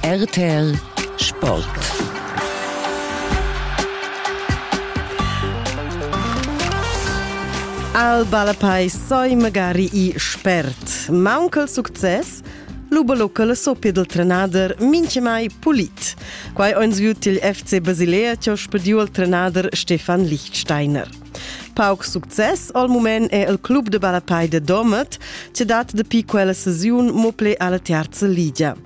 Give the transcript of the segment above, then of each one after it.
RTL Sport Al balapai soi magari i spert. Maunca il success, l'ubalocal so pedel trenader minchemai pulit. Quai ons viu til FC Basilea, cho spediu al trenader Stefan Lichtsteiner. Pauc success al mument è il club de balapei de Domet, che dat dapi quella sesiun mople alla terza ligia.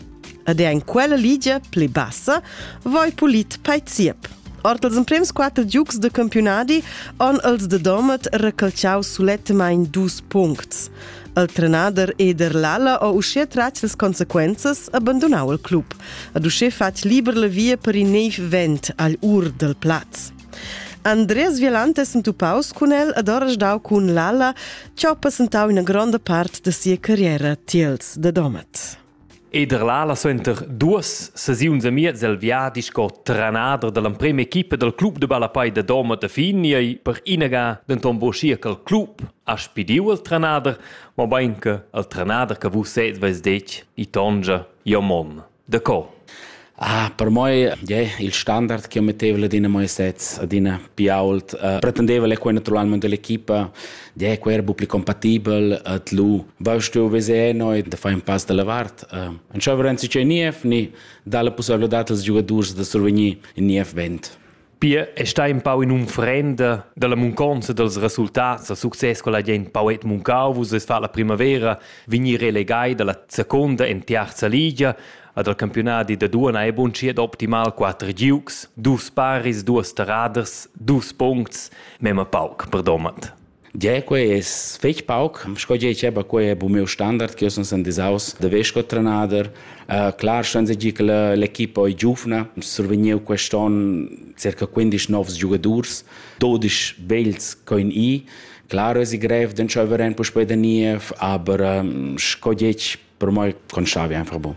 Ed è in quella ligia pli bassa voi pulit paiciep. Ord els emprems quatter giugs de campionadi on els de Domet recalciau sulettemain dus puncts. Il trenader Eder Lalla o uschè tratg les consequenzas abbandonau il club, ad uschè fatg liber la via per in neiv vent agl ur del plaz. Andres Violante è sentupaus cun el ed ha resdau cun Lalla che ha passentau ina gronda part da sia carriera tiels de Domat. Eder Lalla suenter duas sesiuns e miez el viadi sco trenader dall'emprema equipa dal club de ballapai de Domat de Finiei per inaga denton buschia col club ha spidiu il trenader, mobein che il trenader che vus sez veis detg, i tongia, jo mon. Da co? Ah, per moi yeah, il standard che metteva adina moi sets, adina più ault, uh, pretendeva le quei naturalmente dell'equipa, yeah, quei era più compatibel ad lu. Vaust tu veser noi da fare un pass dalla vart? Uh, non c'è verenzi c'è Niev, ni dà la possibilità als giocatori da survenir in Niev vent. Pia è stà empau in'unfrenda dalla munconza dals resultats da success quella gent poet muncau vus es fat la primavera vegnir relegai dalla seconda en terza ligia ad al campionadi da duana è bunschiet optimal quatter giugs, dus paris, duas terraders, dus puncts, memma pauc, perdomat. Gie, quei es fetg pauc, sco gie diceva, quei è bu miu standard che io sun sen disaus da vess sco trenader. Uh, clar ston seigi che l'equipa ei giuvna, survegniu quest'on circa 15 novs giugadurs, 12 vegls coin i. Clar es grev d'entscheiver en puspei da niev, aber um, sco detg, per moi conschavi einfach bu.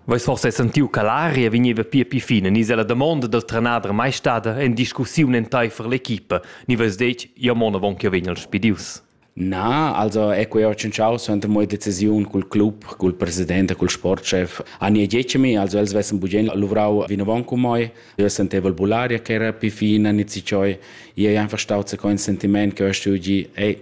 Veis forsa sentiu che l'aria vegneva pia pli fina ni se la damonda dal trenader mai stada en discussiun enteifer l'equipa ni veis detg ja mon avon che vegn el spidius? Na, also è quei orcinciau suenter mo decisiun cul club, cul president e cul sportchef. Ania Giecemi, also els vessen bugen luvrau vinavon cu moi. Io senteval bullaria che era pi fina ni ci cioi. Io ei einfach stau se con sentiment che ho stugi, ei,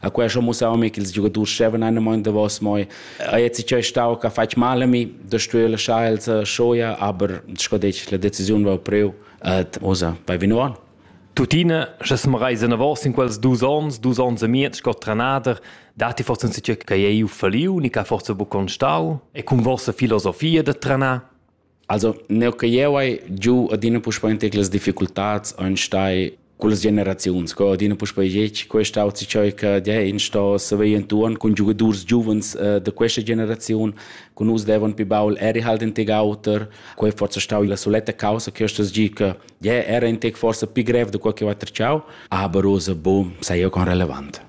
A questo museum che i giocaturi stevan in moment davos moi. A jetzt ich stau che fai male mi, da stuele schal shoia, aber scodec la decisione va preu et osa bei vinoan. Tuttina, sche sem reisen avos in quels dus ons, dus ons e miez sco trenader, dati forse un sitio che ei u faliu, ni che forse bu constau, e con vostra filosofia de trenar, Also, neu che jeu hai giu adina puspei in tec las difficultads ein stai cullas generaziuns, co adina puspei gec, questa auzi cheu che die in sto saver entuorn cun giugadurs giuvens uh, da questa generaziun, con us devan pi baul eri halt in tec auter, quei forse stau la soletta causa che stas gi che die era in tec forse pi grev da quel che va treciau, aber rosa boom, sei jeu con relevant.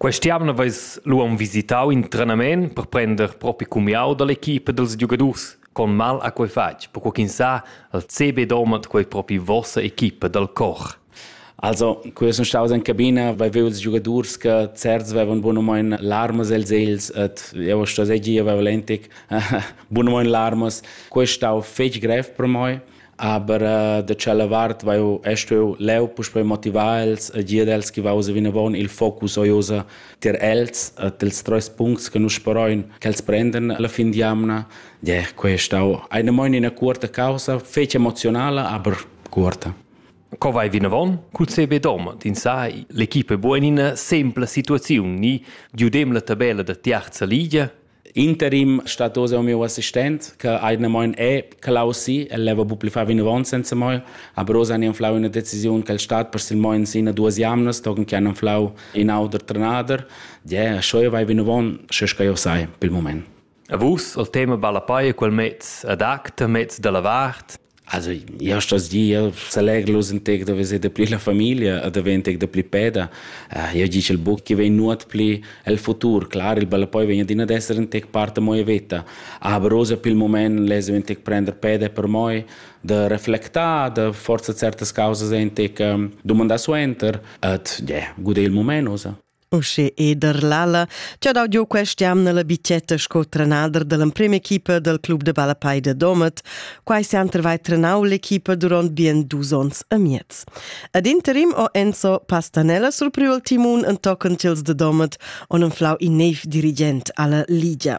Questa jamna veis lu aunc visitau in trenament per prender propi cumiau dall'equipa dals giugadurs con mal ha quei fatg, perquei ch'ins sa, il CB domat quei propi vossa equipa dal cor. Also, quei sun staus in cabina, vai veu ils giugadurs che certs vevan bunamein larmas els els et eu sto seigi avevo lentic bunamein larmas. Quei stau fetg grev per mei aber uh, da tschella vart vai eu est eu leu puspei motivar els e dir els che vausa vinavon il focus oiosa ter els e dels treis puncts che nus speroin che els prenden alla fin di amna yeah, questa eine moin in cuorta causa fece emozionale aber cuorta Co vai vinavon? Cul CB Dom, din sai, l'equipe buenina sempla situaziun ni giudem la tabella da tiarza ligia? interim stat oz el meu assistent che ha ina moin è Klaus si el leva bu pli fa vinavon senza moi aber oz han inflau una decisiun che il stat per sil moin sina duas jamnas togen che han inflau in auter trenader ja scheu vai vinavon sche che io sai pel moment A vus al tema balla paia quel mez ad acta mez dalla vart Also, io sto dir, selegr nus integ da veser dapli la famiglia e da ver integ dapli peda. Uh, io dice il buc che vegn nuot pli el futur. Clar, il ballapoi vegn adina ad esser integ parte moia veta. Aber rosa pil moment lesa integ prender peda per moi, da reflectar, da forza certas causas integ um, domandar suenter. Et, yeah, gude il moment, osa. Usche Eder Lalla ci ha dau giu quest'jamna la bicetta sco trenader dall'emprema equipa dal club de ballapei de Domat. Quai se han trovai trenau l'equipa durant bien dus ons e miez. Ad interim ho Enzo Pastanella surpriu il timun en tochen tils de Domat on enflau in neiv dirigent alla Ligia.